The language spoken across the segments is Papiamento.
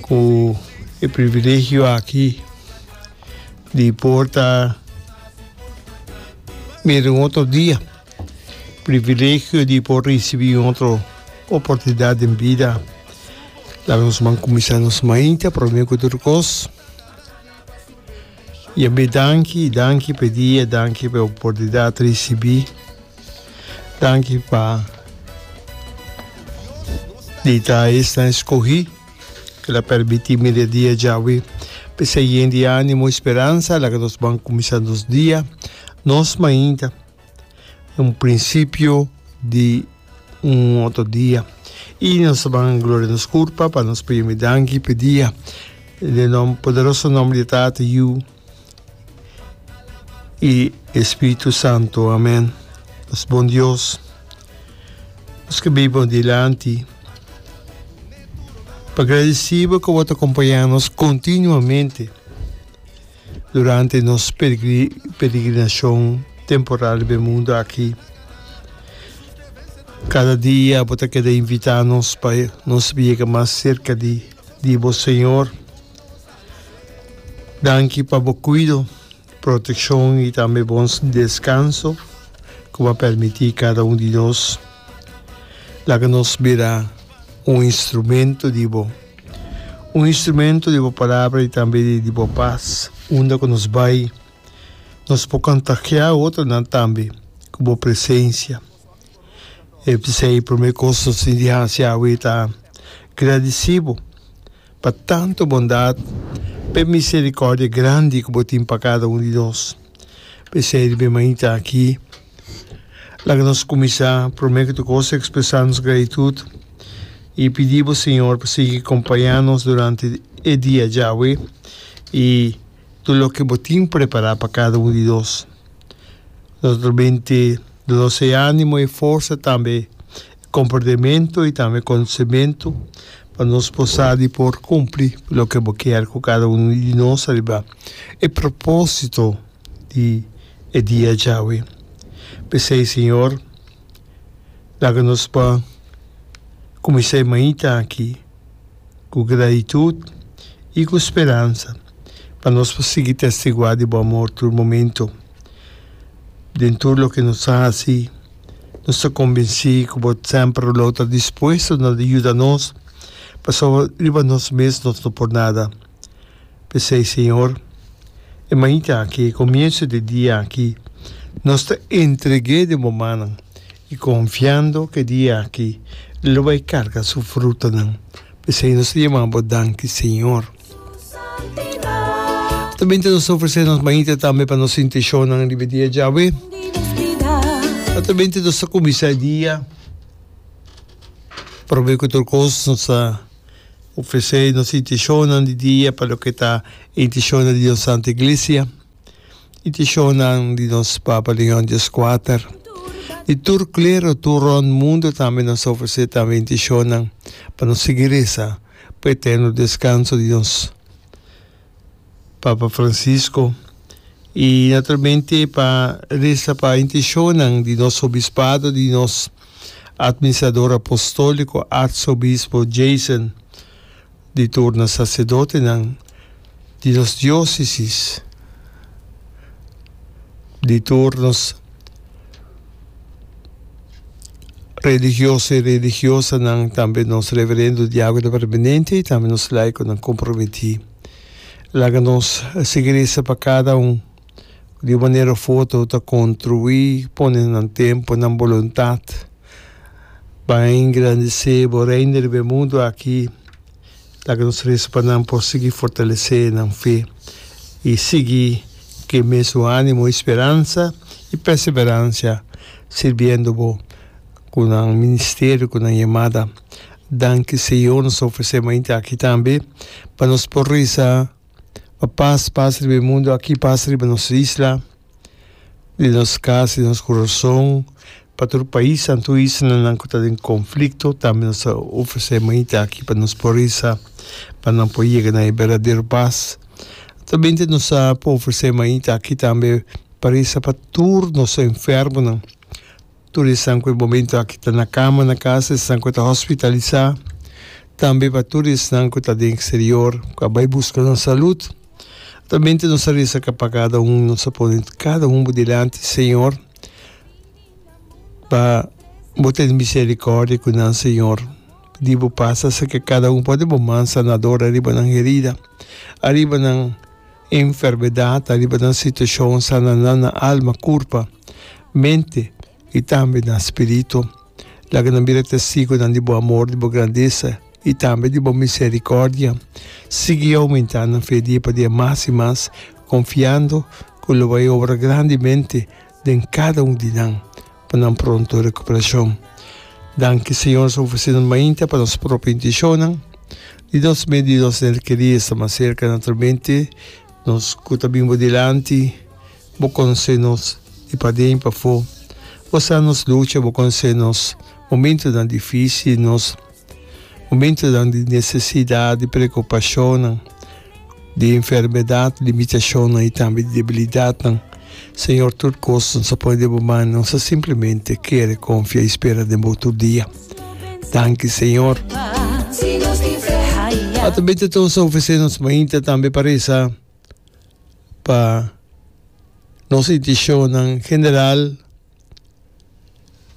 ku e privilegio aki di por ta mira un otro dia, privilegio di por risibi un otro oportunidat den bida, laga nos kuminsá nos mainta promé ku tur kos. Yabé danki, danki pa e dia, danki pa e oportunidat risibí, danki pa di ta esnan skohí ku ta permití mi e dia djawe pa ser yen di ánimo i speransa. Laga nos ban kuminsá nos dia nos mainta, un prinsipio di. un otro dia y nos a ban gloria nos cur papa nos pa yumi danki pe dia le nom poderoso nombre de tata yu y espiritu santo amen nos bon dios nos ke bibo dilanti pa gradicibo ke wata compaña nos continuamente Durante nos peregrinacion temporal riba e mundu aki, cada dia bo ta keda invita nos pa nos sibi yega mas cerca di bo Señor. Danki pa bo cuido, proteccion y tambe bon descanso cu bo a permiti cada un di nos. Laga nos bira un instrumento di bo. Un instrumento di bo palabra y tambe di bo paz. Unda cu nos bay, nos por contagia otronan tambe cu bo presencia. E p'esey prome cos nos tin di haci awe ta gradici bo pa tanto bondad p'e misericordia grandi cu bo tin pa cada un di nos. P'esey riba e mainta aki. Laga nos kuminsá promé ku tur kos ekspresá nos gratitut i pidi bo Señor pa sigui kompañá nos durante e dia djawe i tur loke bo tin prepará pa kada un di nos. Nos ta bin te donos e ánimo, e forsa, tambe e komportamentu i tambe konosementu pa nos por sa di por kumpli loke bo kier ku kada unu di nos riba e propósito. di e dia djawe. P'esei, Señor, laga nos pa kuminsá e mainta aki ku gratitut i ku speransa, pa nos por sigui testiguá di bo amor tur momento. Den tur loke nos a hasi, nos ta kombensí ku bo semper lo ta dispuesto na yuda nos, pasobra riba nos mes nos no por nada. P'esei, Señor, e mainta aki, e comienzo di e dia aki, nos ta entregu'é den bo mannan i confiando cu e dia aki e lo bai carga su frutanan. P'esei nos ta yamá bo danki, Señor. Ta bini ta nos ofrecé nos mainta tambe pa nos intencionnan riba e dia djawe. Ora ta bini ta nos ta cuminsá e dia, probe cu tur cos nos ta. Ofresé nos intishonnan di dia pa loke ta e intishonnan di nos Santu Iglisia, intishonnan di nos Papa Leon Dios Kuater, di tur klero tur rònt mundu tambe nos ta ofresé tambe e intishonnan pa nos sigui resa pa e eterno deskanso di nos. Papa Francisco, i naturalmente pa resa pa intishonnan di nos Obispado, di nos Administrador Apostolico Arsobispo Jason, di tur na Sacerdotenan di nos Diocesis, di tur nos. Religioso i religiosanan, tambe nos reverendo diakonan permanente i tambe nos laikonan komprometí. Laga nos sigui resa pa kada un di un manera òf otro ta kontribuí pone nan tempu, nan boluntat pa engrandesé bo Reino riba e mundu akí. Laga nos resa pa nan por sigui fortalesé nan fe i sigui ku e mesun ánimo i speransa i perseverancia sirbiendo Bo ku nan ministerio, ku nan yamada. Danki, Señor, nos ta ofresé mainta aki tambe pa nos por resa pa pas pasa riba e mundu aki, pas riba nos isla. di nos kas, di nos kurason, pa tur pais nan, tur islanan nan ku ta den konflikto, tambe nos ta ofresé manita aki pa nos por resa, pa nan por yega na e berdadero pas. Aktualmente nos a por ofresé manita aki tambe pa resa pa tur nos enfermonan. Tur esan ku e momento aki ta na kama na kasa, esnan ku ta hospitalisá, tambe pa tur esnan ku ta den eksterior ku a bai buska nan salut. Atamente nos ta resa ka pa kada un, nos ta pone kada un bo dilanti, Señor, pa Bo tene miserikòrdia ku nan, Señor. Pidi Bo pasa serka kada un, ponde Bo man sanador ariba nan herida, ariba nan. Enfermedad ta riba nan situacion sana nan na alma, curpa, mente y tambe nan spirito. Laga nan bira testigonan di bo amor, di bo grandesa y tambe di bo misericordia. Sigui aumenta nan fe dia pa dia mas y mas, confiando cu lo bai obra grandemente den cada un di nan pa nan pronto recuperacion. Danki Señor so ofrecendo mainta pa nos propio intencionnan di nos medio di nos nel quería esta mas cerca naturalmente nos cu ta bin bo dilanti bo conoce nos di paden pafo bo sa nos lucha bo conoce nos momentonan dificil nos Momentunan di nesesidat, di preokupashonnan, di enfermedat, limitashonnan i tambe di debilidatnan, Señor tur kos nos a pone den bo man i nos a simplemente kere konfia i spera den bo tur dia. Danki Señor. Atambe ta tur nos a ofresé nos mainta tambe pa resa pa nos intishonnan general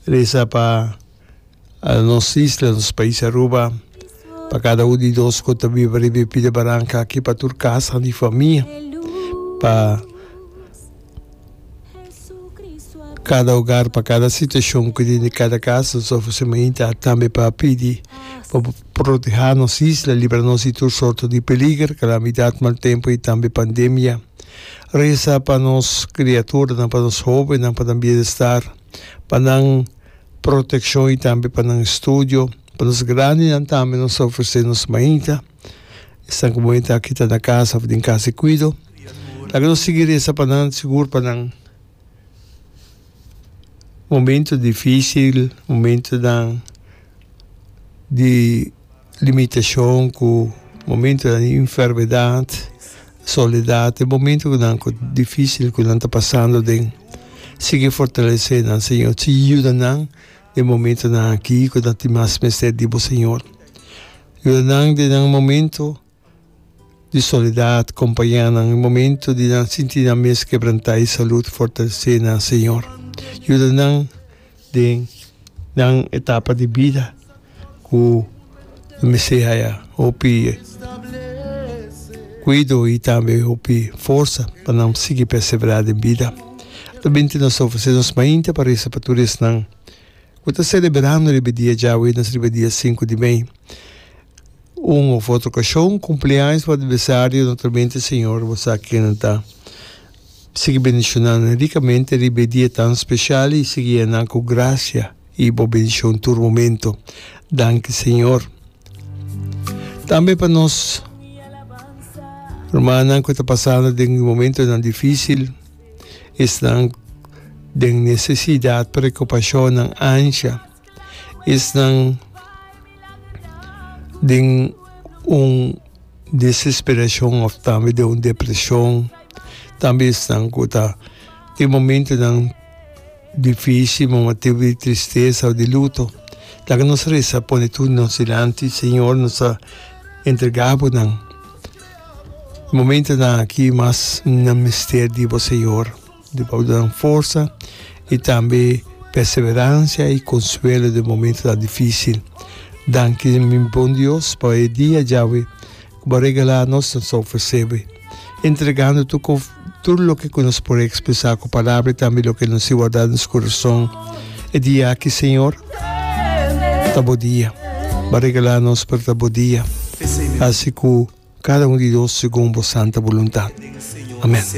Resa pa nos isla, nos pais Aruba, pa kada un di nos ku ta biba riba e pida baranka aki, pa tur kasanan di famia, pa kada ogar, pa kada situashon ku den di kada kas nos ofresé mainta, tambe pa pidi pa bo protehá nos isla, libra nos di tur sorto di peliger, kalamidat, mal tempu i tambe pandemia. Reza pa nos kriaturanan, pa nos hobennan, pa nan bienestar, pa nan protekshon i tambe pa nan studio. Pa nos grandinan tambe nos ta ofresé nos mañita. Esnan ku bon e ta kita na kasa òf den kas di kuido. Laga nos sigui reza pa nan, sigur pa nan momentunan difísil, momentunan di. Limitashon ku momentu di enfermedat, soledat, e momentu nan ku difisil ku nan ta pasando den, sigui fortalesé nan Señor, sigui yuda nan den momentunan aki ku nan tin mas mester di Bo Señor. Yuda nan den nan momentu. di soledad, compaña nan e momento di nan sinti nan mes kebrantá i salud fortalecé nan Señor yuda nan den nan etapa di bida ku nan mester haya hopi kuido i tambe hopi forsa pa nan sigui perseverá den bida. Ato binti nos ta ofresé nos mainta pa resa pa tur esnan. Ku ta selebrando riba e dia djawe nos riba dia sinku di mei. Un òf otro okashon, kumpleaños òf aniversario, naturalmente Señor bo sa ken nan ta. Sigui bendishona nan rikamente riba e dia tan speshal i sigui yena nan ku grasia i bo bendishon tur momento. Danki Señor. Tambe pa nos rumannan ku ta pasando den momentonan difísil. Esnan den nesesidat preokupashonnan ancha. Esnan den un desesperashon òf tambe den un depreshon. Tambe esnan ku ta tin momentunan difísil, momantu di tristesa o di luto. Laga nos resa pone tur nos dilanti, Señor, nos a entregá bo nan. E momentonan aki mas nan mester di bo Señor, di bo nan forsa i tambe perseverancia i consuelo den momentonan dificil. Danki mi bon Dios pa e dia djawe cu bo regala nos, nos ta ofrecebe entregando tur Tur loke ku nos por ekspresá ku palabra i tambe loke nos tin wardá den nos kurason e dia aki, Señor, ta Bo dia. Bo a regalá nos, pero ta Bo dia. Hasi ku kada un di nos segun Bo santa boluntat. Amèn.